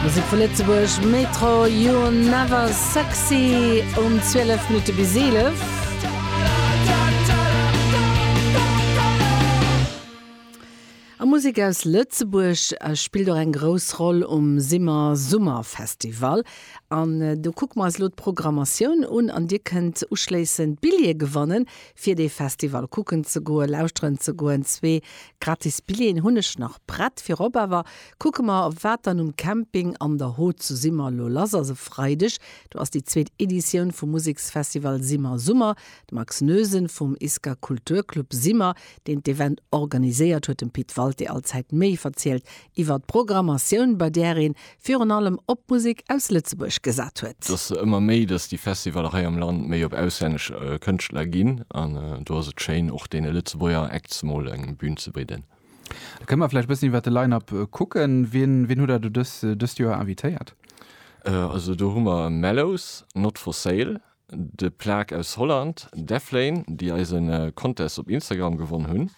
Musek vu Lëtzebuerg, Metro, You're Never Sexy um 12 Minutte bis 11. A Musek aus Lëtzebuerg spillt och eng grouss Roll um Simmer Summerfestival. An do kucke mer eis elo d'Programmatioun un an dir kënnt uschléissend Billjeeë gewannen, fir dee Festival kucken ze goen, lauschteren ze goen. Zwee gratis Billjeeën hunn ech nach prett. Virop awer Kucke mer, wat dann um Camping An der Hot zu Simmer lo lass ass. E Freideg do ass déi zweet Editioun vum Museksfestival Simmer Summer. De Max Noesen vum ISKA Kulturclub Simmer, deen d'Event organiséiert, huet dem Pit Walté Allzäit méi verzielt iwwer d'Programmatioun, bei där ee virun allem op Musek aus Lëtzebuerg gesat huet. Et ass ëmmer méi, datt déi Festivaller hei am Land méi op auslännesch Kënschtler ginn an do ass et schéin, och deene Lëtzebuerger Acts mol eng Bün ze bidden. Da kënne mer vläicht e bëssen iwwer de Line-Up kucken. Wien, wien hutt Der do dës, dëst Joer invitéiert? Also do hu mer Mellows, Not For Sale, de Plague aus Holland, Deflane, déi eise Contest op Instagram gewonn hunn,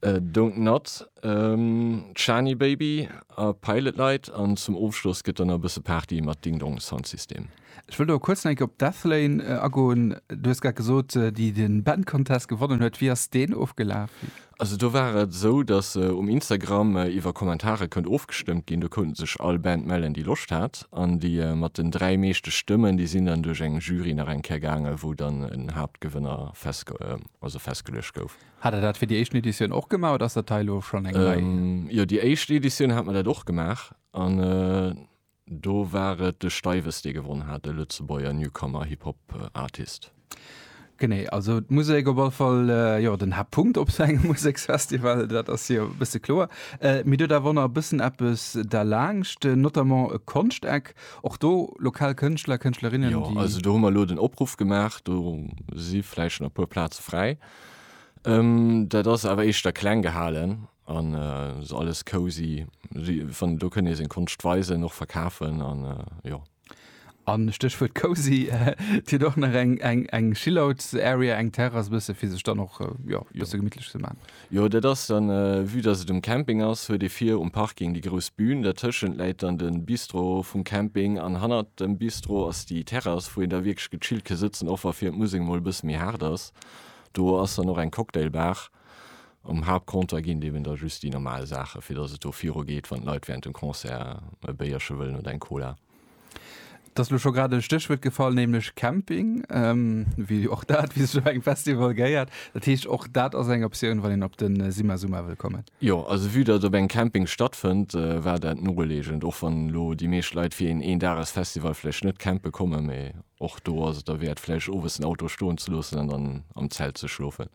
Don't Nod, d'Shani Baby a Pilot Light an zum Ofschloss gëtt dann nach e bësse Party mat Ding Dong Sound System. Ech wëll do kuerz nach eng Kéier op Deathlane agoen. Du hues grad gesot, déi den Band Contest gewonnen huet. Wéi ass deen ofgelaf? Also do war et esou, datt um Instagram iwwer Kommentare konnt ofgestëmmt ginn. Do konnte sech all Band mellen, déi Loscht hat. An déi mat den dräi meeschte Stëmmen, déi sinn dann duerch eng Jury nach eng Kéier gaangen, wou dann en Haaptgewënner festge also festgeluecht gouf. Hat der dat fir déi éischten Editioun och gemaach oder ass dat hei elo schonn eng nei? Jo, déi éischt Editioun hat mer dat och gemaach an. Do war et de Steiwes, dee gewonn hat, e Lëtzebuerger Newcomer Hip Hop Artist. Genee, also d'Musek op alle Fall, jo, den Haaptpunkt op esou engem Museksfestival, dat ass jo e bësse kloer. Mee et huet awer och nach e bëssen eppes derlaanscht, notamment e Konschteck, och do lokal Kënschtler, Kënschtlerinnen, déi. Jo, also do hu mer elo den Opruff gemaach, do si vläicht nach e puer Plaze fräi. Dat ass awer éischter kleng gehalen. An se alles cozy, wann do kënnt ee seng Konscht weisen, och verkafen an jo. An Stéchwuert cozy, et huet och nach eng chillout area, eng Terrass bësse fir sech dann och jo bësse gemittlech ze man. Jo dat ass dann, vue dass et um Camping ass, huet ee vir um Parking déi grouss Bühn, dertëschent läit dann den Bistro vum Camping an hannert dem Bistro ass déi Terrass wou een da wierklech gechillt ke sëtzen, och wa fir d'Musek mol bësse méi haart ass. Do ass dann och eng Cocktailbar. Um Haaptcompter ginn et eben da just déi normal Saachen, fir datt et do virugeet, wann d'Leit wärend dem Concert e Béierche wëllen oder eng Cola. Et ass elo scho grad e Stéchwuert gefall, nämlech Camping, wéi och dat, wéi sech op engem Festival gehéiert. Dat heescht, och dat ass eng Optioun, wann een op de Simazuma wëll kommen. Jo, also vue datt et op engem Camping stattfënnt, war dat nolegend, och wann elo déi meescht Leit fir een Een-Dages-Festival vläicht net campe kommen. Mee och do ass et derwäert, vläicht owes den Auto stoen ze loossen an dann am Zelt ze schlofen.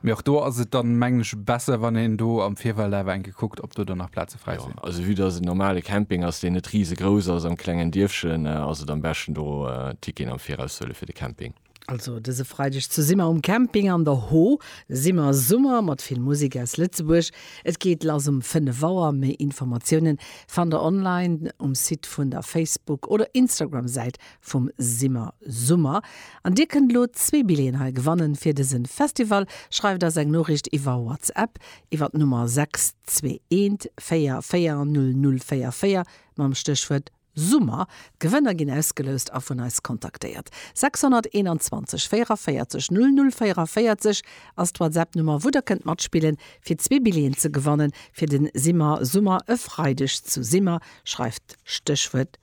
Mee och do ass et dann, mengen ech, besser, wann een do am Virfeld awer eng Kéier kuckt, ob do dann nach Plaze fräi sinn. Jo, also vue dass et en normale Camping ass, deen net risegrouss ass, am klengen Dierfchen, ass et am beschten, do Ticketen am Viraus ze huelen fir de Camping. Also dëse Freideg zu Simmer um Camping an der Ho, Simmer Summer mat vill Musek aus Lëtzebuerg. Et geet lass um 5 Auer. Méi Informatiounen fannt der online um Site vun der Facebook oder Instagram-Säit vum Simmer Summer an dir kënnt elo zwee Billeten hei gewannen fir dësen Festival. Schreift eis eng Noriicht iwwer WhatsApp iwwer d'Nummer 621440044 mam Stéchwuert Summer. D'Gewënner ginn ausgeloust a vun eis kontaktéiert. 621 44 0044 ass d'Whatsapp Nummer wou der kënnt matspillen fir zwee Billeten ze gewannen fir den Simmer Summer e Freideg zu Simmer. Schreift Stéchwuert